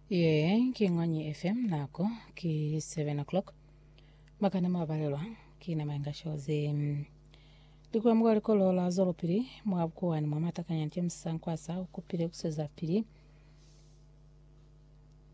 Ye ki Ngwanyi FM nako ki 7 o'clock. Makana mwa balelwa ki na mainga shozi. Likula mukwa likolo la zolopili mwa bukuwani mwa matakanya James Sankwasa ukupile kusweza pili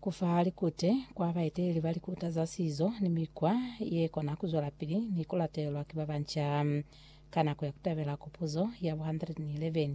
kufa likute kwa baeteleli ba likuta za sizo ni mikwa ye kona kuzwela pili ni kulatelelwa ki babanca. Ka nako ya kutabela kupuzo ya bo 111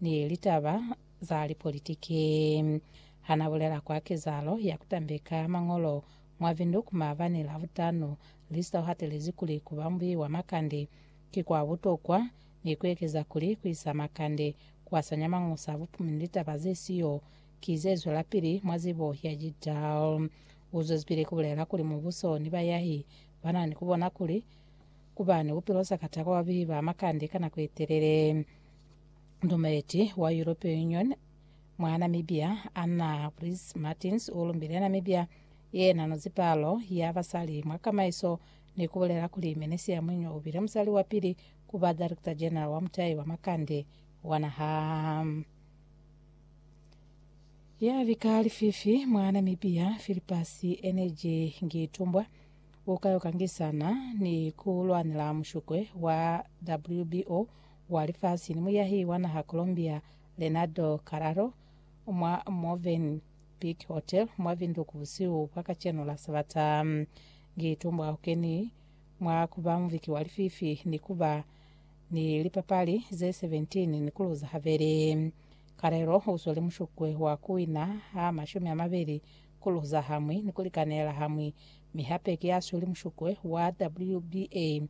ni litaba za lipolitiki. Ha n'a bulela kwa kezahalo ya ku tambeka mañolo mwa Windhoek maabani Lavutanu, Lister u hatelezi kuli ku ba mubeyi wa makande ki kwa butokwa ni ku ekeza kuli ku isa makande ku hasanya mañosa a bupumi ni litaba ze siyo ki ze zwelapili mwa zibo ya Jidal. U zwezipili ku bulela kuli mubuso ni bayahi ba na ni ku bona kuli ku ba ni bupilo sa katako ba bubeyi ba makande ka nako ye telele. Ndumeleti wa European Union mwa Namibia Anna Briz Martins u lumbile Namibia yena no zipalo ya basali mwa kamaiso ni ku bulela kuli Menisia Mwinywa u bile musali wa pili ku ba Director General wa mutai wa makande wa naha. Ya bika lififi mwa Namibia Philippus Energy Ngitumbwa u ka yo kangisana ni ku lwanela mushukwe wa WBO wa lifasi ni muyahi wa naha Colombia Leonardo Carraro mwa Movenpick Hotel mwa Windhoek busihu bwa kacenu la Sabata. Ngi tumbwa hukeni mwa kuba muviki wa lififi ni kuba ni lipapali ze 17 ni kuluza habeli. Carrero uzwele mushukwe wa kuwina ha mashumi amabeli, kuluza hamwi ni kulikanela hamwi, mi hape ki asweli mushukwe wa WBA.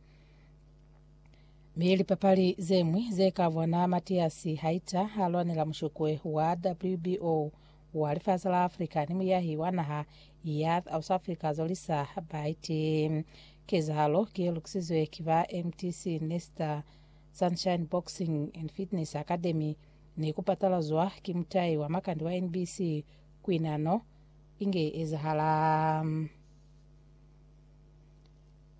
Mi lipapali zeñwi ze ka vwana Matiasi haita ha lwanela mushokwe wa WBO wa lifasi la Afrika ni muyahi wa naha ya Ausafrika Zolisa Baiti. Kezahalo ki ye lukisizwe ki ba MTC Nesta Sunshine Boxing and Fitness Academy ni ku patalazwa ki mutai wa makandi wa NBC kwi nano inge ezahala.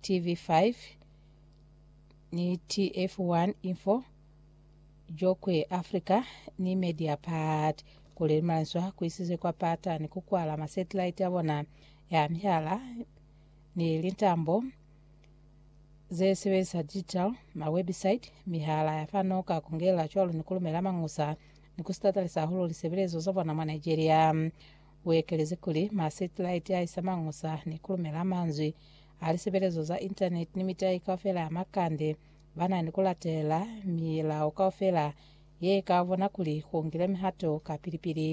TV5 ni TF1 Info, Jokwe Africa ni Mediapart kuli limalanzwa kuisize kwa pata ni kukwala masetilaiti abona ya mihala ni lintambo zesebelisa digital, mawebisite, mihala ya fano ka kungela cwalo ni kulumela mañusa ni kusitatalisa hahulu lisebelezo zabona mwa Nigeria. U ekelezi kuli, Masetilaiti a isa mañusa ni ku lumela manzwi a lisebelezo za Intaneti ni mitai kaufela ya makande. Ba na ni ku latelela milao kaufela ye i ka bona kuli ku ngile mihato kapili-pili.